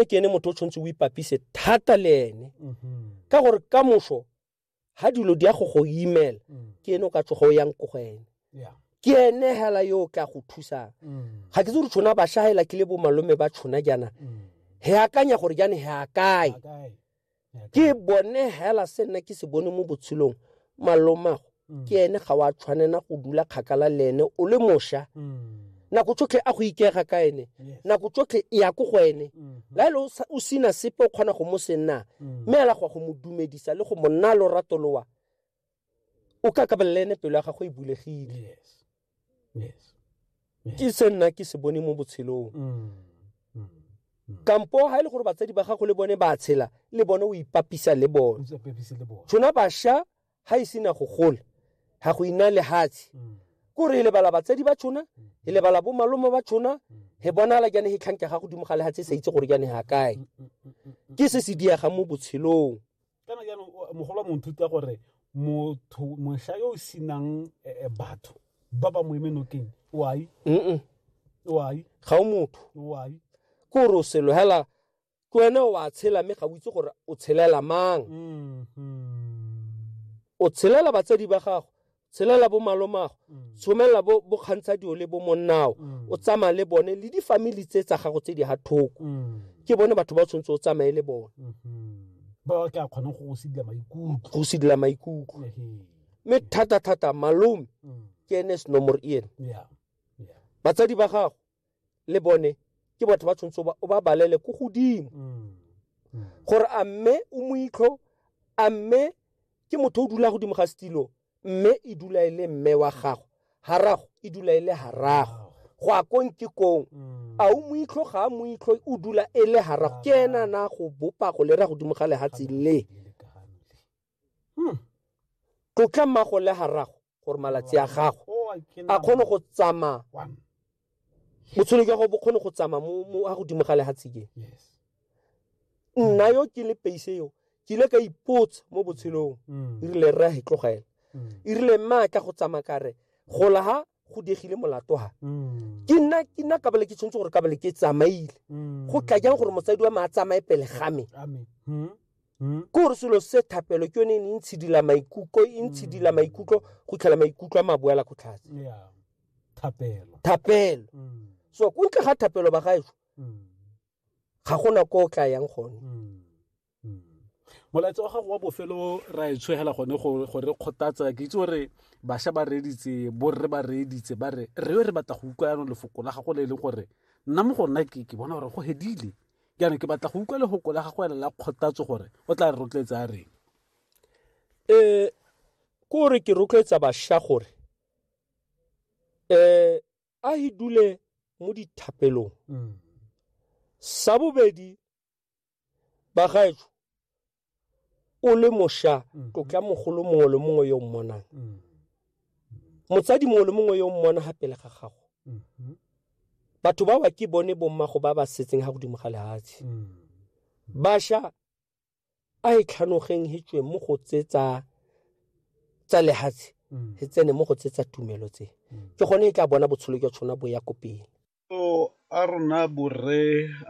e ke ene motho o tshwanetse o ipapise thata le ene mm-hmm. ka gore ka moso ga dilo di ya go go imela mm. ke ene o ka tsogo o yang ko go ene ke ene hela yo o ka go thusang mm. ga ke tse gore tshona ba shagela ke le bo malome ba tshona jaana he mm. akanya gore jaane he akae ke bone hela se nna ke se bone mo botshelong malomago mm. ke ene ga wa tshwanela go dula kgakala le ene o le mosha mm. nako tsotlhe a go ikega ka ene nako tsotlhe e ya ko go ene mm-hmm. la ele o sena sepe o kgona go mo senna mm. mme ela go go mo dumedisa le go mo nna lorato lowa o ka kabelela ene pelo ya gago e bulegile ke se nna ke se bone mo botshelong mm, mm, mm. kampo ga e le gore batsadi ba gago le bone ba tshela le bone o ipapisa le bone tshona basha ga e sena go gola ga go ina lehatshe ko re e lebala batsadi ba tshona e lebala bo malome ba tshona he bonala jane he tlhanke ga godimo ga lehatshe e sa itse gore jane ga kae ke se se diagang mo botshelong Kana jaanong mogolo mo nthuta gore motho mosha yo o sinang eh, eh, batho ba ba mo eme nokeng wai mm wai ga o motho wai ke gore o selo hela ke wena o a tshela mme ga o itse gore o tshelela mang Mhm. o tshelela batsadi ba gago tshelela bo malomago mm. tshomelela bo bo kgantsha dio le bo monnao mm. o tsamaya le bone le difamily tse tsa gago tse di ha thoko mm. ke bone batho ba tshwanetse o tsamaye le bone mm-hmm. ba ka kgona go go sidila maikutlo go sidila maikutlo mme thata thata malome ke ene senomoro ene batsadi ba gago le bone ke batho ba tshwanetse o ba- o ba balele ko godimo Mm. Mm. gore a mme o moitlho a mme ke motho o dula godimo ga setilo mme e dula e le mme wa gago garago e dula e le garago go a kong ke kong Mm. a o moitlho ga a moitlho o dula e le garago ke ena na go bopa go lera godimo ga lehatshe le Lelekane le. hmm. tlotla mmago le ga rago gore malatsi a gago oh, a kgone go tsamaya botshelo jwa gago bo kgone go tsamaya mo a godimo ga lehatshikeng nna yo ke le peise yo ke ile ka ipotsa mo botshelong mm. e rile rra he tlogela mm. e rile mma ka go tsamaya kare gola ha go diegile molato ha Mm. ke nna ke nna kabale ke tshwanetse gore kabale ke tsamaile Mm. go tla jang gore motsadi wa me a tsamaye pele ga me Amen. Mm. Mm. ke gore selo se thapelo ke yone e ne e ntshidila maikutlo e ntshidila maikutlo go tlhela maikutlo a maboela go tlhatse Yeah. Thapelo. thapelo Mm. so ko ntle ga thapelo ba gaešo Mm. ga gona ko o tla yang gone Mm. molaetsa wa gago wa bofelo ra e tshwegela gone go re kgothatsa ke itse gore bašwa ba reeditse borre ba reeditse ba re re yo re batla go utlwa yanong lefoko la gago le e leng gore nna mo go nna ke ke bona gore go hedile jaanong ke batla go utlwa lefoko la gago ela la kgothatso gore o tla re rotloetsa a reng um ke gore ke rotloetsa bašwa gore um a e dule mo dithapelong mm. sa bobedi bagaetsho o le mosha mm. tlotla mogolo mongwe le mongwe yo mmonang mm. motsadi mongwe le mongwe yo mmona ga pele ga gago mm-hmm. batho ba ba ke bone bommago ba ba setseng ga godimo ga lehatshe mm. basha a e tlhanogeng hetswe mo go tse tsa tsa lehatshe he tsene mo go tse tsa tumelo tse ke gone e tla bona botshelo jwa tshona bo ya ko pele Maikutlo a rona borre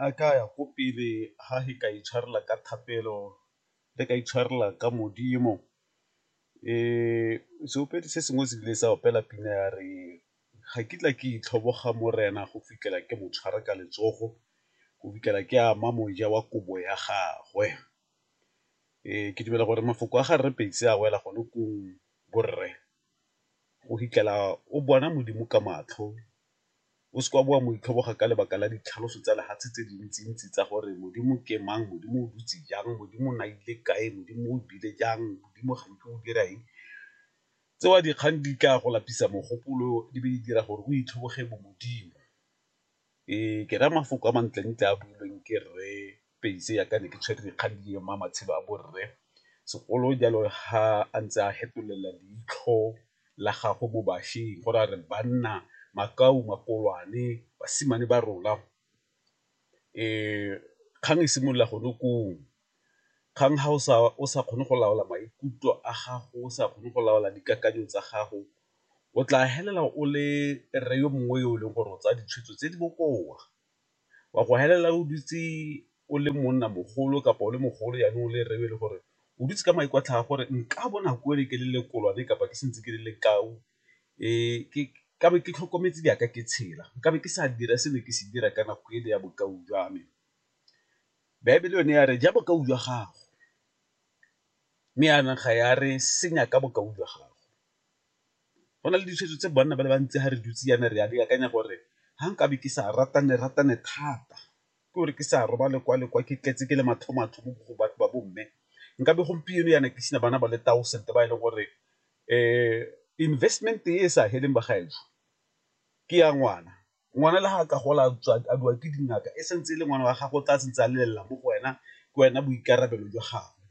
a ka ya ko pele ga re ka itshwarela ka thapelo re ka itshwarela ka Modimo. Seopedi se sengwe se ile sa opela pina ya re ga kitla ke itlhoboga morena go fitlhela ke mo tshwara ka letsogo go fitlhela ke ama moja wa kobo ya gagwe. Ke dumela gore mafoko a ga Rre Pedi a wela gone koo borre. go fitlhela o bona Modimo ka matlho, o seke wa bo wa mo itlhoboga ka lebaka la ditlhaloso tsa lefatshe tse dintsi-ntsi tsa gore Modimo ke mang, Modimo o dutse jang, Modimo o na ile kae, Modimo o bile jang, Modimo ga nke o dira eng. Tseo dikgang di tla go lapisa mogopolo di be di dira gore o itlhoboge bo Modimo. Ee, ke raya mafoko a mantlentle a builweng ke rre Pacy ya ka ne ke tshwere dikgang di ema matshelo a borre segolo jalo ga a ntse a fetolela leitlho la gago mo bašweng go ra re banna makau makolwane basimane ba rona. Kgang e simolola gone koo Kgang ga o sa kgone go laola maikutlo a gago, o sa kgone go laola dikakanyo tsa gago, o tla felela o le rre yo mongwe yo e leng gore o tsaya ditshwetso tse di bokoa, wa go felela o dutse o le monna mogolo kapa o le mogolo jaanong o le rre yo e leng gore o dutse ka maikutlo a gago gore nka bo nako e le ke le lekolwane kapa ke santse ke le lekau ka be ke tlhokometse jaaka ke tshela, nka be ke sa dira se ne ke se dira ka nako ele ya bokau jwa me. Baebele yone ya re ja bokau jwa gago mme yanong ga ya re senya ka bokau jwa gago go na le ditshwetso tse banna ba le bantsi ga re dutse yana re ya di akanya gore ga nkabe ke sa ratane ratane thata ke gore ke sa roba lekwa lekwa ke tletse ke le mathomatho mo go batho ba bomme nkabe gompieno yana ke sena bana ba le thousand ba e leng gore um investment e sa heleng bagaetsho ke ya ngwana Ngwana le ga ka gola a biwa ke dingaka e santse e le ngwana wa gago o tla santse a lelela mo go wena ke wena boikarabelo jwa gagwe.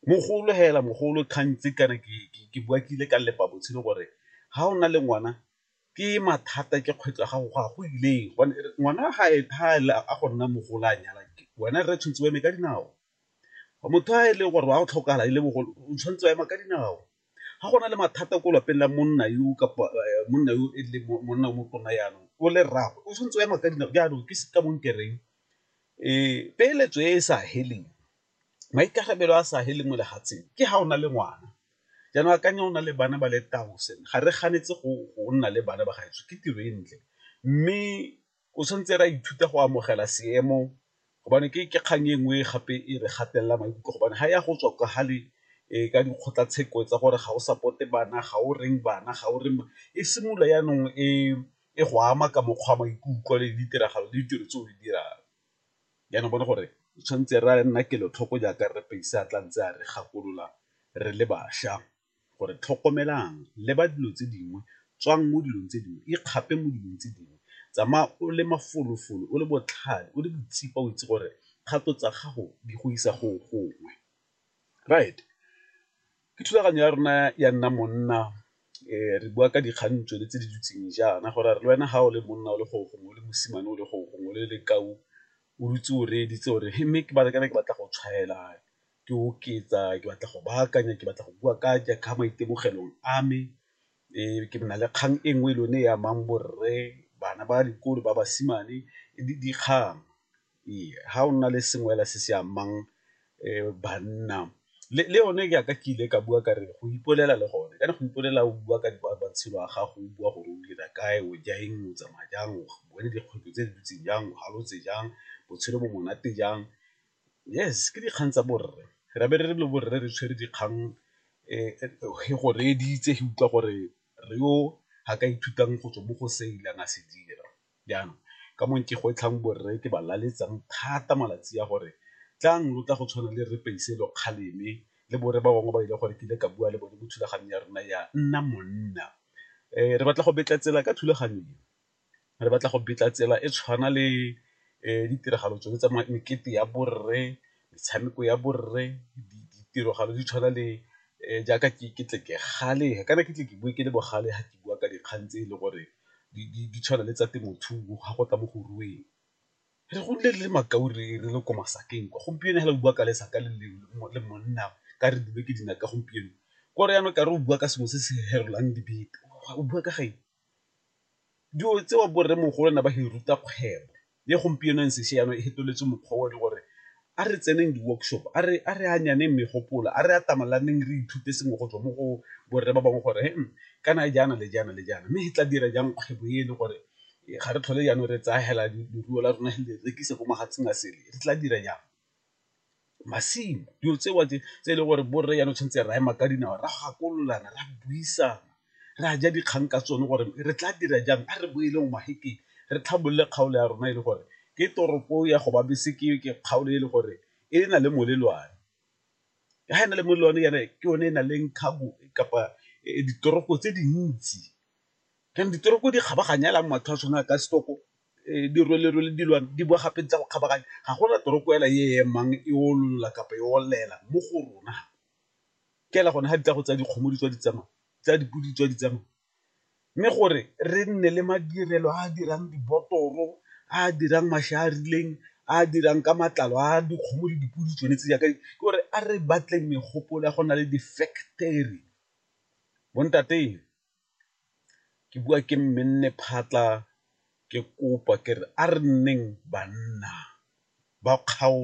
Mogolo fela mogolo kgang tse kana ke bua ke ile ka lepa botshelo gore ga o na le ngwana ke mathata ke kgwetlho ya gago go ya go ileng gobane ngwana ga e thale a go nna mogolo a nyala wena rre tshwantse o eme ka dinao, motho a e leng gore wa go tlhokafala e le mogolo o tshwanetse wa ema ka dinao. Ga go na le mathata ko lapeng la monna yo kapa monna yo e leng monna o motona jaanong o le rraagwe o tshwanetse o ema ka dinao jaanong ke ka bong kereng peeletso e e sa feleng, maikarabelo a sa feleng mo lefatsheng ke ga o na le ngwana. Jaanong akanya o na le bana ba le ga re ganetse go nna le bana ba gaetsho ke tiro e ntle mme O tshwanetse ra ithuta go amogela seemo gobane ke kgang e nngwe gape e re gatelela maikutlo gobane ga ya go tswa ka ga le ka dikgotlatsheko tsa gore ga o support-e bana, ga o reng bana, ga o reng e simolola jaanong e e go ama ka mokgwa wa maikutlo le ditiragalo le ditiro tse o di dirang. Jaanong bone gore tshwanetse re nna kelotlhoko jaaka rre Paisa a tla ntse a re gakolola re le bašwa. gore tlhokomelang leba dilo tse dingwe tswang mo dilong tse dingwe ikgape mo dilong tse dingwe tsamaya o le mafolofolo o le botlhale o le boitshepo o itse gore kgato tsa gago di go isa go gongwe. Right, ke thulaganyo ya rona ya nna monna re bua ka dikgang tsone tse di dutseng jaana gore re le wena ga o le monna o le gore gongwe le mosimane o le gore gongwe le le ka o dutse o reeditse gore mme ke batla go tshwaela ke oketsa ke batla go baakanya ke batla go bua ka ka maitemogelong a me ke na le kgang e nngwe le yone e amang borre, bana ba dikolo ba basimane le dikgang. Ee, ga o nna le sengwe fela se se amang banna le yone jaaka ke ile ka bua ka re go ipolela le gone kana go ipolela o bua ka matshelo a gago o bua gore o dira kae o ja eng o tsamaya jang o bone dikgwetlho tse di ntseng jang o halotse jang botshelo bo monate jang Yes ke dikgang tsa borre, ra be re re lo borre re tshwere dikgang he go reeditse he utlwa gore re yo ha ka ithutang go tswa mo go se ileng a se dira. Jaanong ka mo ke gwetlhang borre ke ba laletsang thata malatsi a gore tlang lo tla go tshwana le rre Paiselo kgaleme le borre ba bangwe ba e leng gore ke ile ka bua le bone mo thulaganyong ya rona ya nna monna re batla go betla tsela ka thulaganyo e. re batla go betla tsela e tshwana le ditiragalo tsone tsa mekete ya borre, metshameko ya borre, ditiragalo di tshwana le jaaka ke tle ke gale kana ke tle ke bue ke le bogale ga ke bua ka dikgang tse e le gore di tshwana le tsa temothuo ga go tla mo go rueng. Re godile re le makau re le ko masakeng kwa, gompieno fela o bua ka lesaka le le monna ka re dule ke dinaka gompieno, kore yanong ka re o bua ka sengwe se se ferelang dibete o bua ka ga eng. Dilo tseo bo rremogolo ne ba re ruta kgwebo le gompieno ntse se jaana e fetoletswe mokgwa o le gore a re tseneng di-workshop, a re megopolo, a re atamalaneng re ithute sengwe go tswa mo go borre ba bangwe gore kana jaana le jaana le jaana mme re tla dira jang kgwebo e le gore ga re tlhole jaanong re tsaya fela leruo la rona re le rekisa ko mafatsheng a sele, re tla dira jang. masimo dilo tseo tse e leng gore borre jaanong tshwanetse re ema ka dinao ra gakololana ra buisana ra ja dikgang ka tsone gore re tla dira jang a re boele mo mahekeng re tlhabolole kgaolo ya rona e le gore ke toropo ya go babese ke ke kgaolo e le gore e na le molelwane ga e na le molelwane yana ke yone e na leng cargo kapa ditoropo tse dintsi jaanong ditoropo di kgabaganya fela mo batho ba tshwana ka setoko dirwelerwele dilwana di boa gape ntse go kgabaganya ga gona toropo ela e emang e ololola kapa e olela mo go rona ke ela gone ga di tla go tsa dikgomo di tswa di tsamaya tsa dipodi tswa di tsamaya mme gore re nne le madirelo a dirang dibotoro a dirang mašwi a rileng a dirang ka matlalo a dikgomo le dipodi tsone tse jaaka ke gore a re batleng megopolo ya go na le di-factory bontateng. ke bua ke mme nne phatlha ke kopa ke re a re nneng banna ba kgaolo.